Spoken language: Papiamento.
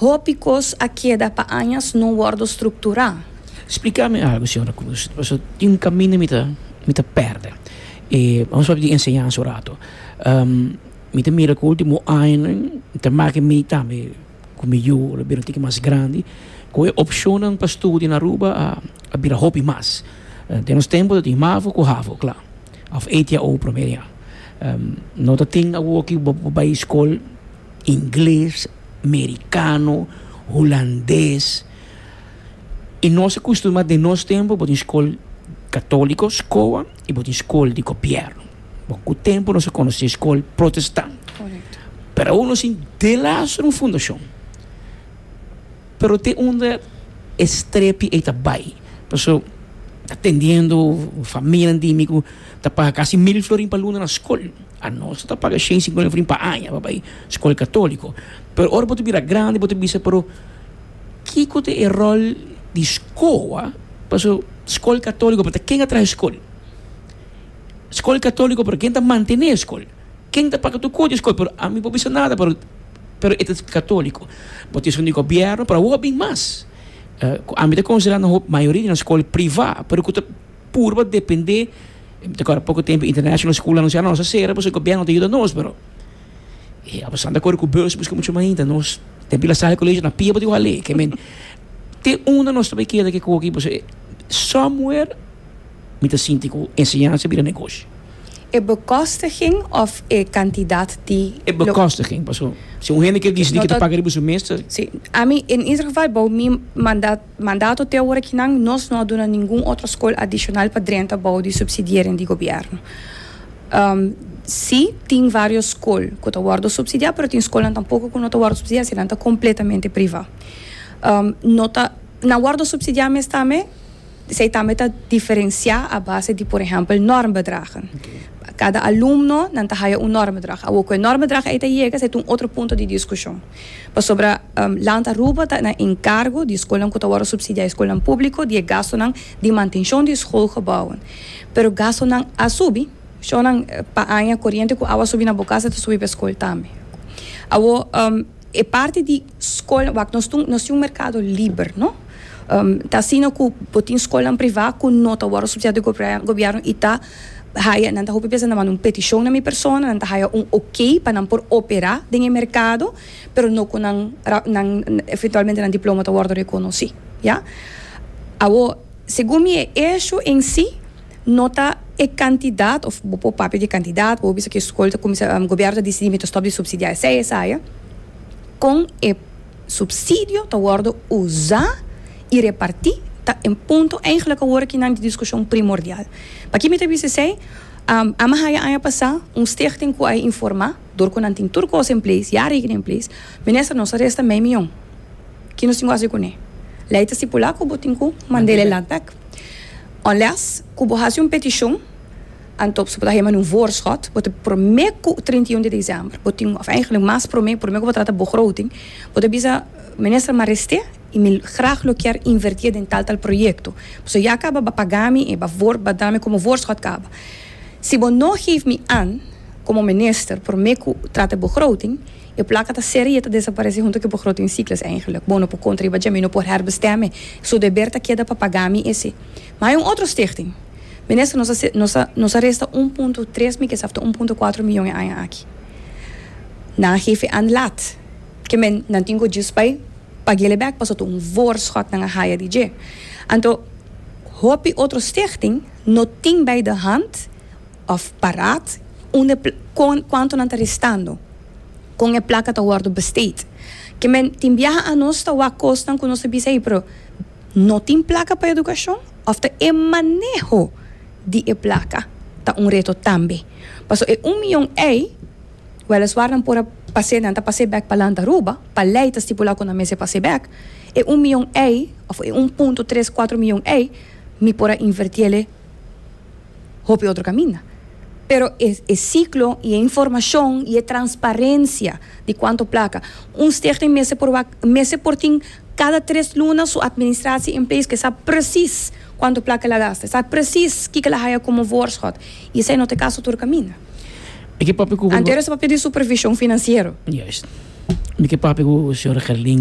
Hopi kos a keda pa añas no wordo strukturá. Spliká mi algu, Señora Cruz, paso tin un kaminda mi ta mi ta pèrdè. E nos papia di enseñansa un ratu. Mi ta mira ku último añanan ta make ku mi tambe ku mi yu lo bira un tiki mas grandi ku e opshonnan pa studia na Aruba a a bira hopi mas. Den nos tempu tabatin mavo ku havo, kla. Òf ATAO promé yà. No tatin awoki bo bai skol. ingles, merikano, hulandes i nos a kustumbrá den nos tempu bo tin skol katóliko skoa i bo tin skol di gobièrnu bot ku tempu nos a konosé skol protestan pero aun nos tin delas un fundashon pero te unda e strepi ei ta bai paso atendiendo familianan di mi ku ta paga kasi mil florin pa luna na skol. Anos ta paga shen sinkuna flin pa aña pa bai skol katoliko. Pero ora bo ta bira grandi bo ta bisa, pero kiko ta e ròl di skoa? Paso skol katoliko, pero ta ken a traha e skol? Skol katoliko, pero ken ta mantené e skol? Ken ta paga tur kos di e skol? Pero ami por bisa nada, pero pero e ta katoliko. Bo ta esun di gobièrnu, pero awor a bin mas. Ku ami ta konsiderá nan hopi, mayoria di nan skol privá, pero ku ta. purba depende ta kor poko tempo international school anuncia nos a sera pues gobierno ta yuda nos pero e abasan ta kor ku bus busca mucho mas hinta nos tempo la sali colegio na pia bo di wak lei ke men te unda nos ta bay keda ke koki pues somewhere mi ta sinti ku enseñansa bira negoshi. E bekostiging of e cantidad di lo. E bekostiging paso si un hende kier dicidi ke ta paga riba su mes ta. Si ami en ieder geval bo mi manda. Mandato te ora kinan nos no a duna ningun otro skol adishonal pa drenta bou di supsidiering di gobièrnu. Si, tin vários skol ku ta wòrdu supsidiá, pero tin skolnan tampoko ku no ta wòrdu supsidiá si nan ta kompletamente privá. No ta nan wòrdu supsidiá mes tambe, esei tambe ta diferensiá a base di por ehèmpel normbedragen. Kada alumno nan ta haya un normbedrag. Awor ku e normbedrag ei ta yega esei ta un otro punto di diskushon. Pasobra land Aruba ta na enkargo di skolnan ku ta wòrdu supsidiá, e skolnan públiko, di e gastunan di mantenshon di skolgebouwen. Pero gastunan a subi. Shownan pa aña koriente ku awa subi na bo kas a ta subi pa e skol tambe. Awo e parti di skol wak nos tin nos tin un merkado liber no? Ta asina ku bo tin skolnan privá ku no ta wòrdu supsidiá di gobièrnu i ta haya, nan ta hopi bes a nan manda un peticion na mi persona, nan ta haya un ok pa nan por opera den e mercado, pero no cu nan nan eventualmente nan diploma ta wordo reconoci. Ya. Awor, segun mi e hecho en si no ta e cantidad of bo por papia di e cantidad, bo por bisa cu e scol ta cuminsa, gobierno ta dicidi mi ta stop di subsidia esey esaya, con e. Subsidio ta worde usa y reparti ta en punto eigenlik awor akinan di discusion primordial. Paki mi ta bisti esey? A mi haya aña pasa un stichting cu a e informa, door cu nan tin tur cos en place, ya rekening en place, Minister, nos a resta mei miyon. Ki nos tin cu haci cune? Ley ta stipula cu bo tin cu mandele landpack. Unless cu bo haci un peticion. Anto su por ta hema di un voorschot. Bo ta prome ku trinta i un di desèmber bo tin òf èinklik mas prome prome ku bo ta trata begroting bo ta bisa Minister Mareste i mi grag lo kier invertí den tal tal proyekto pasobra ya kaba ba pagá mi e ba woor ba duna mi komo voorschot kaba. Si bo no geef mi an komo minister prome ku trata begroting e plaka ta sera i e ta desaparese hunto ku e begrotingcyclus èinklik bo no por kontra i ba dje mi no por herbesteme su deber ta keda pa paga mi ese. Ma hay un otro stichting. Minister nos a nos a nos a resta un punto tres mi kesa after un punto cuatro miyon e aña aki. Nan hefe an laat. Ke men nan tin ku djis bai pagele bek paso ta un voorschot nan a haya di dje. Anto hopi otro stichting no tin bai de hand of paraat unda e kon kuanto nan ta restando. Kon e plaka ta wordo besteed. Ke men tin biaha anos ta wak kosnan ku nos ta bisa ey pero No tin plaka pa edukashon òf ta e maneho di e plaka ta un reto tambe. Paso e un miyon ei, wèleswar nan por a pas'é, nan ta pas'é bèk pa lanta Aruba, pa lei ta stipulá ku nan mester pas'é bèk, e un miyon ei òf e un punto tres kuatro miyon ei mi por a invertiele. hopi otro caminda. Pero e e ciclo y e informacion y e transparencia di cuanto placa, un stichting mester por wak, mester por tin cada tres luna su administratie in place, cu e sa precies cuanto placa el a gasta, e sa precies kico el a haya como voorschot y esai no ta e caso tur caminda. Anterior esabapia di supervision financiero. Juist. Mi ke papia ku señor Gerlin.